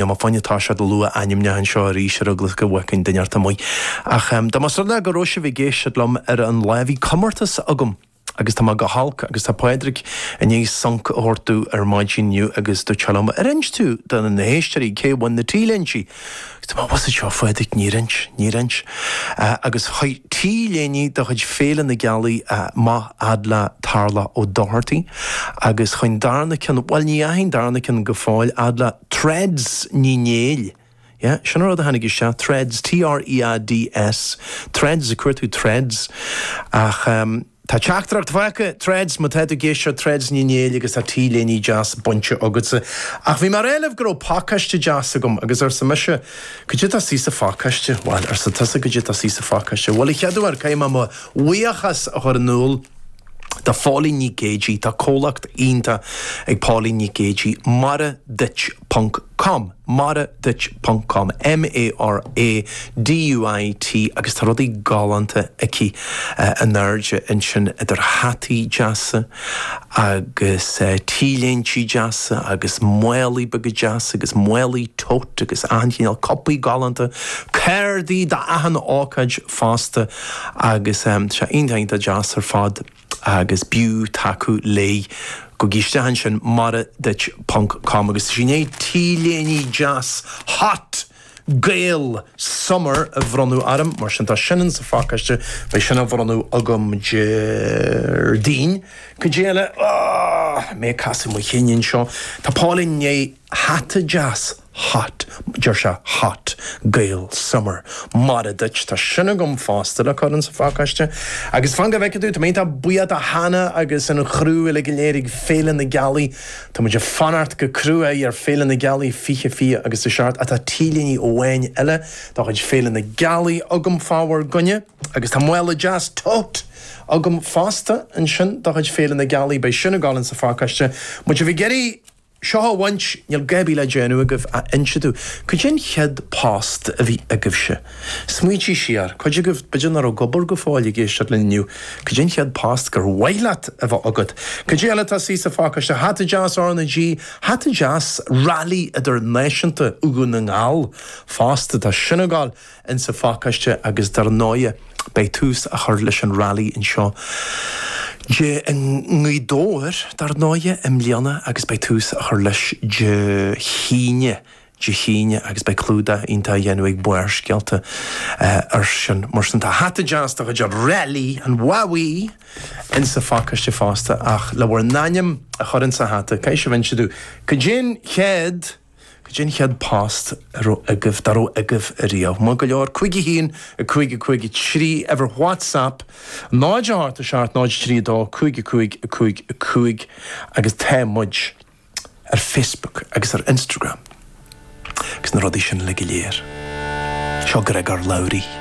Ní maith liom a bheith ag lua ainmneacha anseo arís ar eagla is go bhfágfainn duine inteacht amuigh. Ach dá mba go raibh sibh ag éisteacht liom ar an Luan bhí comórtas agam agus tá mé go holc agus tá Pádraig i ndiaidh sonc a thabhairt domh ar maidin inniu agus dúirt liom ar inst tú do na héisteoirí cé a bhain na t-léinte agus tá mé bocht anseo a Phádraig níor inst, níor inst. Agus chuaigh t-léine de chuid Féile na Gealaí amach fhad le Tarlach Ó Dochartaigh agus chuaigh an darna ceann, bhuel ní hé an darna ceann go fóill, fhad le. Threads Ní Néill, Yeah, sin an rud a tháinig isteach, Threads, T-h-r-e-a-d-s, Threads, ag cuartú Threads. Ach ehm, tá teachtaireacht faighte! Threads, má tá tú i gcéist, seo Threads Ní Néill agus tá t-léine deas bainte agatsa. Ach bhí mé ag rá libh go raibh pacáiste deas agam agus arsa mise Goidé atá istigh sa phacáiste. Bhail, arsa tusa, Goidé atá istigh sa phacáiste. Bhail, a chéaduair, caithfidh mé mo bhuíochas a chur in iúl. do Phauline Nic Géidigh Tá comhlacht iontach ag Pauline Nic Géidigh, Mara Duit ponc com, mara duit ponc com, M-A-R-A-D-U-I-T, agus tá rudaí galánta aici in airde ansin idir hataí deasa agus T-léintí deasa agus málaí beaga deasa agus málaí tote agus achan cineál cupaí galánta, cárdaí do achan ócáid fosta. Agus tá sé iontach deas ar fad agus b'fhiú tacú léi gabh isteach ansin, Mara duit ponc com agus sin í an t-léine deas hot! Gael! Summer a bronnadh orm, mar sin tá sin in sa phacáiste, beidh sin á bhronnadh agam Déardaoin. Cad é eile? Ahh! Mé ag casadh mo chinn anseo. Tá Pauline i ndiaidh hata deas. hot, deir sé hot gael summer. Mara duit, tá sin agam fosta le cur insa phacáiste. Agus fan go bhfeice tú, tá mé iontach buíoch de Hannah agus an chriú uile go léir ag Féile na Gealaí. Tá muid ag fanacht go cruaidh ar Féile na Gealaí 20 26 agus is amhlaidh atá t-léine amháin eile de chuid Féile na Gealaí agam fá bhur gcoinne. Agus tá mála deas tote agam fosta ansin de chuid Féile na Gealaí, beidh sin ag dul insa phacáiste. Má tá sibh ag iarraidh. seo a bhaint, níl a dhath ar bith le déanamh agaibh ach inse dúinn cad é an chéad post a bhí agaibhse. Smaointí siar. Cuid agaibh, b'fhéidir nach bhfuil ag obair go fóill ag éisteacht linn inniu, cad é an chéad post gur mhaith leat a bheith agat? Cad é eile atá istigh sa phacáiste? Hata deas R na G, hata deas rally idirnáisiúnta Dhún na nGall fosta, tá sin ag gabháil. in sa phacáiste agus dar ndóighe beidh tús á chur leis an rally anseo Dé i nGaoth Dobhair dar ndóighe i mbliana agus beidh tús á chur leis Dé hAoine Dé hAoine agus beidh clúdach iontach á dhéanamh ag Barrscéalta ar sin mar sin tá hata deas de chuid Rally an Mhámaigh in sa phacáiste fosta ach le bhur n-ainm a chur in sa hata caithfidh sibh inse dúinn cad é an chéad Goidé an chéad phost a raibh agaibh, dá raibh agaibh ariamh? Maith go leor. Cúig a haon, a cúig, a cúig a trí, uimhir WhatsApp, 0 8 7 0 3 2 5 a cúig, a cúig, a cúig, agus tá muid ar Facebook agus ar Instagram agus na rudaí sin uilig go léir. Seo Gregor Labhruidh.